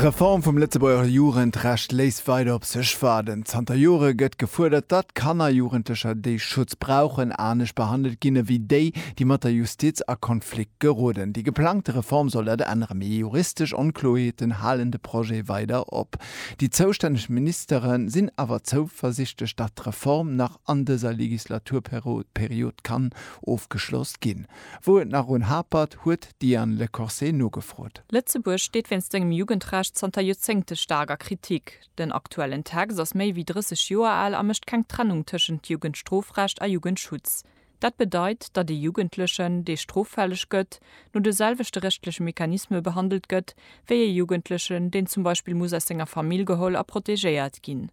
D'Reform vum Lëtzebuerger Jugendrecht léisst weider op sech waarden. Zanter Jore gëtt gefuerdert, datt Kanner a Jugendlecher, déi Schutz brauchen, anescht behandelt ginn ewéi déi, déi mat der Justiz a Konflikt geroden. Déi geplangte Reform soll dat änneren, mee juristesch Onkloerheeten halen de Projet weider op. Déi zoustänneg Ministere sinn awer zouversichtlech, datt d'Reform nach an dëser Legislaturperiod kann ofgeschloss ginn. Wou et nach un hapert, huet d'Diane Lecorset nogefrot. Lëtzebuerg steet wéinst sengem Jugendrecht zanter Joerzéngte staark a Kritik. Den aktuellen Text ass méi wéi 30 Joer al a mécht keng Trennung tëschent Jugendstrofrecht a Jugendschutz. Dat bedeit, datt ee Jugendlechen, dee stroffälleg gëtt, no de selwechte rechtleche Mechanisme behandelt gëtt, wéi ee Jugendlechen, deen zum Beispill muss aus senger Famill geholl a protegéiert ginn.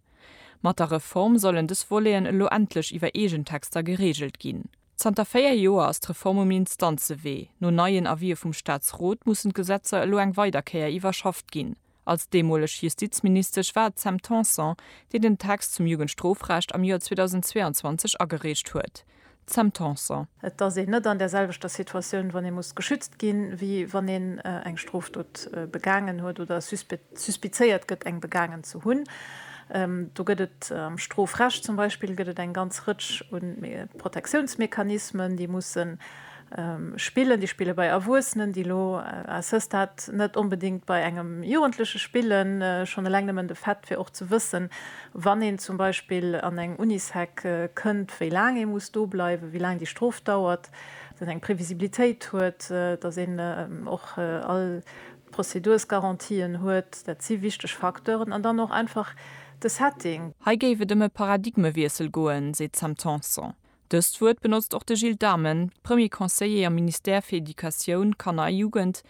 Mat der Reform sollen dës Voleten elo endlech iwwer eegen Texter gereegelt ginn. Zanter véier Joer ass d'Reform um Instanzewee. No neien Avisë vum Staatsrot mussen d'Gesetzer elo eng weider Kéier iwwerschafft ginn. Als deemoleg Justizministesch war et d'Sam Tanson, déi den Text zum Jugendstrofrecht am Joer 2022 agereecht huet. D'Sam Tanson. Et ass een net an där selwechter Situatioun, wann ee muss geschützt ginn, wéi wann een eng Strofdot begaangen huet oder e suspizéiert gëtt eng begaangen ze hunn. Do gëtt et am Strofrecht zum Beispill gëtt et eng ganz Rëtsch u Protektiounsmechanismen, déi musse spillen, déi spille bei Erwuessenen, déi elo à ce stade net onbedéngt bei engem Jugendleche spillen. Schonn eleng nëmmen de Fait fir och ze wëssen, wann een zum Beispill an eng Unisec kënnt, wéi laang ee muss do bleiwen, wéi laang déi Strof dauert, dass een eng Previsibilitéit huet, dass een och all Prozedursgarantien huet, dat si wichteg Facteuren, an dann och einfach de Setting. Hei géif et ëm e Paradigmewiessel goen, seet d'Sam Tanson. Dëst Wuert benotzt och de Gilles Dhamen, Premier Conseiller am Ministère fir Educatioun, Kanner a Jugend,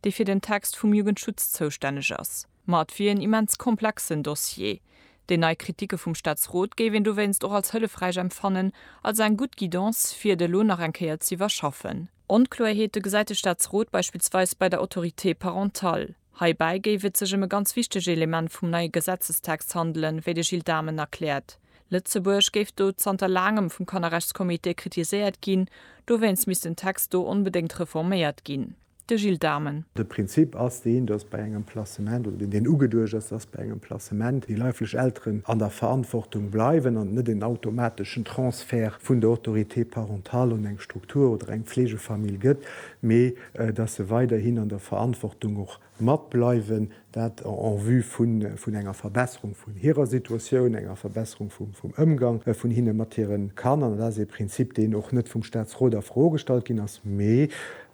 dee fir den Text vum Jugendschutz zoustänneg ass. Ma et wier en immens komplexen Dossier. Déi nei Kritike vum Staatsrot géif een dowéinst och als hëllefräich empfannen, als eng gutt Guidance, fir et elo nach eng Kéier z'iwwerschaffen. Onkloerheete gesäit de Staatsrot beispillsweis bei der Autorité parentale. Heibäi géif et sech ëm e ganz wichtege Element vum neie Gesetzestext handelen, wéi de Gilles Dhamen erkläert. Lëtzebuerg géif do zanter laangem vum Kannerrechtscomité kritiséiert ginn, dowéinst misst den Text do onbedéngt reforméiert ginn. De Gilles Dhamen. De Prinzip ass deen, datt bei engem Placement, oder deen deen ugeduecht ass, datt bei engem Placement déi leiflech Elteren an der Verantwortung bleiwen an et net en automateschen Transfert d'Transfert vun der Autorité parentale un eng Struktur oder eng Pflegefamill gëtt, mee datt se weiderhin an der Verantwortung och mat bleiwen, dat en vue vun enger Verbesserung vun hirer Situatioun, enger Verbesserung vum Ëmgang vun hinne mat hire Kanner. Dat ass ee Prinzip, deen och net vum Statsrot a Fro gestallt ginn ass, mee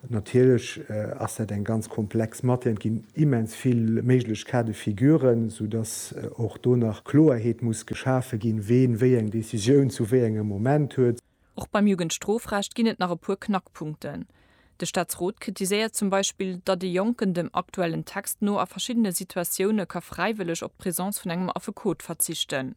Natierlech ass dat eng ganz komplex Matière, et ginn immens vill méiglech Cas de figuren, sou datt och do nach Kloerheet muss geschafe ginn, ween wéi eng Decisioun zu wéi engem Moment huet. Och beim Jugendstrofrecht ginn et nach e puer Knackpunkten. De Staatsrot kritiséiert zum Beispill, datt ee Jonken dem aktuellen Text no a verschiddene Situatioune ka fräiwëlleg op d'Presence vun engem Affekot verzichten.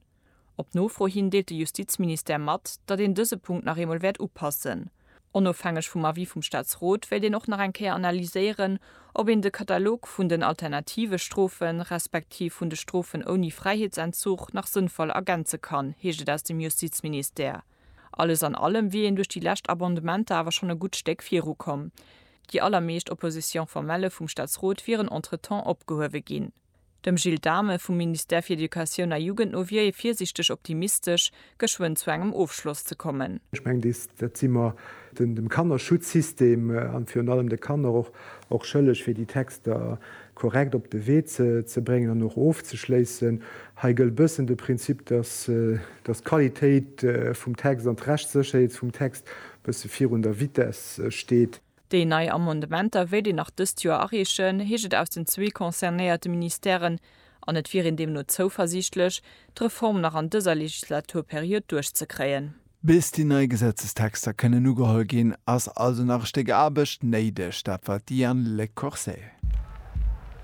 Op Nofro hin deelt de Justizministère mat, datt een dëse Punkt nach eemol wäert upassen. Onofhängeg vum Avis vum Staatsrot wéilt een och nach eng Kéier analyséieren, ob een de Katalog vun den alternative Strofen, respektiv vun de Strofen ouni Fräiheetsentzug nach sënnvoll ergänze kann, heescht et aus dem Justizministère. Alles an allem wier een duerch déi lescht Abondementer awer schonn e gutt Stéck virukomm. Déi allermeescht Opposition formelle vum Staatsrot wieren entretemps opgehuewe ginn. Dem Gilles Dhamen vum Ministère fir Educatioun a Jugend no wier ee virsiichteg optimistesch, geschwënn zu engem Ofschloss ze kommen. Ech mengen, dees, dat si mer dem Kannerschutzsystem an virun allem de Kanner och, och schëlleg, fir déi Texter korrekt op de Wee ze, ze bréngen an och ofzeschléissen. Hei gëllt e bëssen de Prinzip, dass, dass d'Qualitéit vum Text an d'Rechtssécherheet vum Text e bësse virun der Vitesse steet. Déi nei Amendementer wéilt een nach dëst Joer areechen, heescht et aus den zwee concernéierte Ministèren, an et wier een deemno zouversiichtlech, d'Reform nach an dëser Legislaturperiod duerchzekréien. Bis déi nei Gesetzestexter kënnen ugeholl ginn, ass also nach e Stéck Aarbecht néideg, dat war d'Diane Lecoursay.